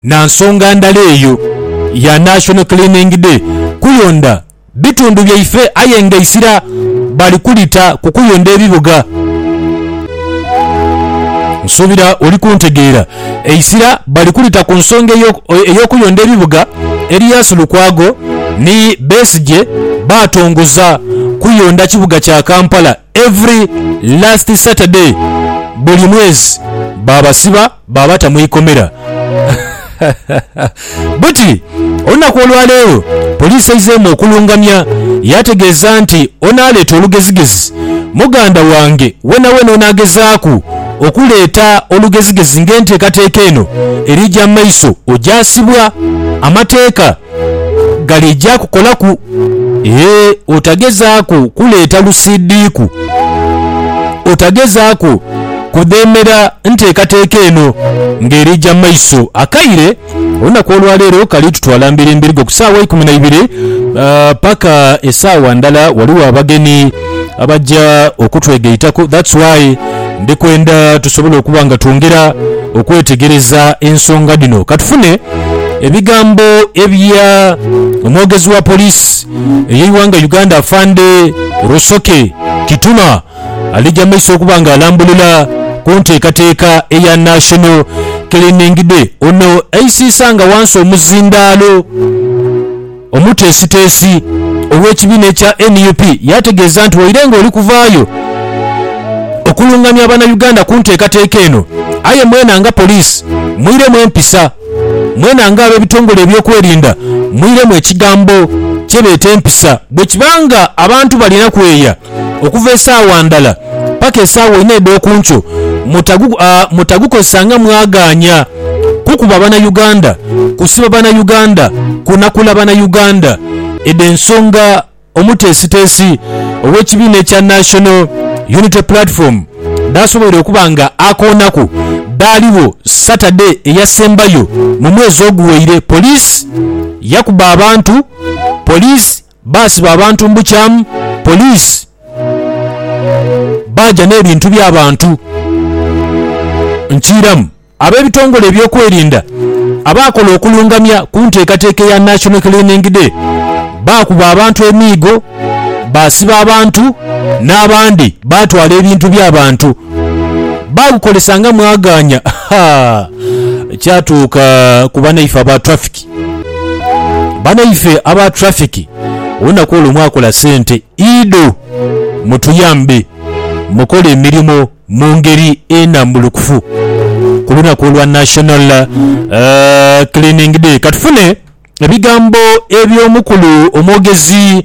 Na nsonga ndala eyo ya National Cleaning Day kuyondha bitundu byaife aye nga eisira bali kulita ku kuyondha ebibuga. Nsuubira oli kuntegeera. Eisira bali kulita ku nsonga ey'okuyondha ebibuga. Erias Lukwago ni Besigye baatongoza kuyondha kibuga kya Kampala every last Saturday buli mwezi baabasiba. Baabata mu ikomera. Buti olunaku olwaleero poliisi eizeemu okulungamya yaategeeza nti onaaleeta olugezigezi muganda wange weenaweena onaagezaaku okuleeta olugezigezi ng'enteekateeka eno eriija mu maiso ojaasibwa amateeka. galeija kukolaku. Ee, otagezaaku kuleeta lusiidhiiku. Otagezaaku kudheemera nteekateeka eno ng'eriija mu maiso. Akaire olunaku olwa leero kali tutwala mbirimbirigo ku saawa ikumi na ibiri paka esaawa ndala. Ghaligho abagenyi. abaja okutwegaitaku that's why ndi kwenda tusobole okuba nga twongera okwetegereza ensonga dhino. Katufune ebigambo ebya omwogezi wa police eyeighanga Uganda Afande Rusoke Kituma alija mumaiso okuba nga alambulula kuntekateka eya National Cleaning Day. Ono aisiisa nga wansi omuzindaalo. Omuteesiteesi ow'ekibiina ekya nup yategeeza nti waire nga oli kuvaayo okulungamya Bannayuganda ku nteekateeka eno aye mwena nga poliisi mwiremu empisa, mwena nga ab'ebitongole ebyokwerinda mwiremu ekigambo kye beeta empisa. Bwekiba nga abantu balina kweya okuva esaawa ndala paka esaawa inha edh'oku nkyo mutagukozesanga mwagaanya kukuba bana Uganda, kusiba bana Uganda, kunakula bana Uganda, edho ensonga omuteesiteesi ow'ekibiina ekya National Unity Platform dhaasoboire okuba nga akoonaku dhaaligho Saturday eyasembayo mu mwezi oguweire. Police yakuba abantu. Police. Baasiba abantu mu bukyamu, poliisi baaja n'ebintu by'abantu nkiiramu. Ab'ebitongole ebyokwerinda abaakola okulungamya ku nteekateeka eya National Cleaning Day baakuba abantu emiigo, baasiba abantu n'abandi baatwala ebintu by'abantu baagukozesa nga mwagaanya kyatuuka ku banaife aba traffic. Banaife aba traffic olunaku olwo mwakola sente iidho mutuyambe mukole emirimo mungeri enambulukufu kulunaku olwa national cleaning day katufune ebigambo ebyomukulu omwogezi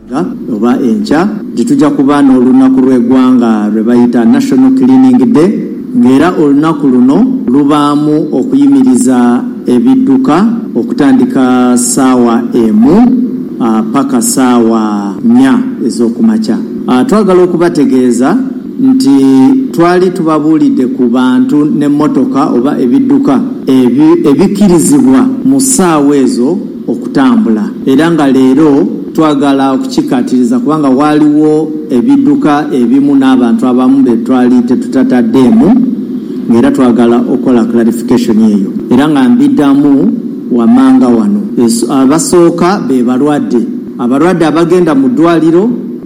Enkya oba enkya dhi tuja kuba n'olunaku lw'eighanga lwe bayita National Cleaning Day nga era olunaku luno lubaamu okuyimiriza ebidhuka okutandika saawa emu paka saawa nnya ez'okumakya. Twagala okubategeeza nti twali tubabuulidde ku bantu n'emmotoka oba ebidhuka ebikirizibwa mu saawa ezo. okutambula era nga leero twagala okukikaatiriza kubanga ghaligho ebidhuka ebimu n'abantu abamu be twali tetutataddeemu ng'era twagala okola clarification eyo era nga mbidhamu wammanga wano. Abasooka be balwadde, abalwadde abagenda mu ddwaaliro.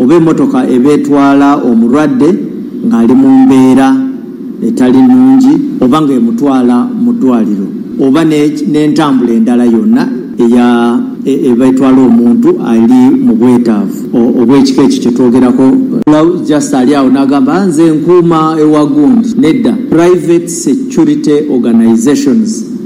oba emotoka eba etwala omulwadde ng'ali mu mbeera etali nnungi oba ng'emutwala mu ddwaaliro oba n'entambula endala yonna eya eba etwala omuntu ali mu bwetaavu obw'ekika ekyo kye twogerako. Pulaawu just ali agho n'agamba, Nze nkuuma ewa gundi. Nedda. Private Security Organisations.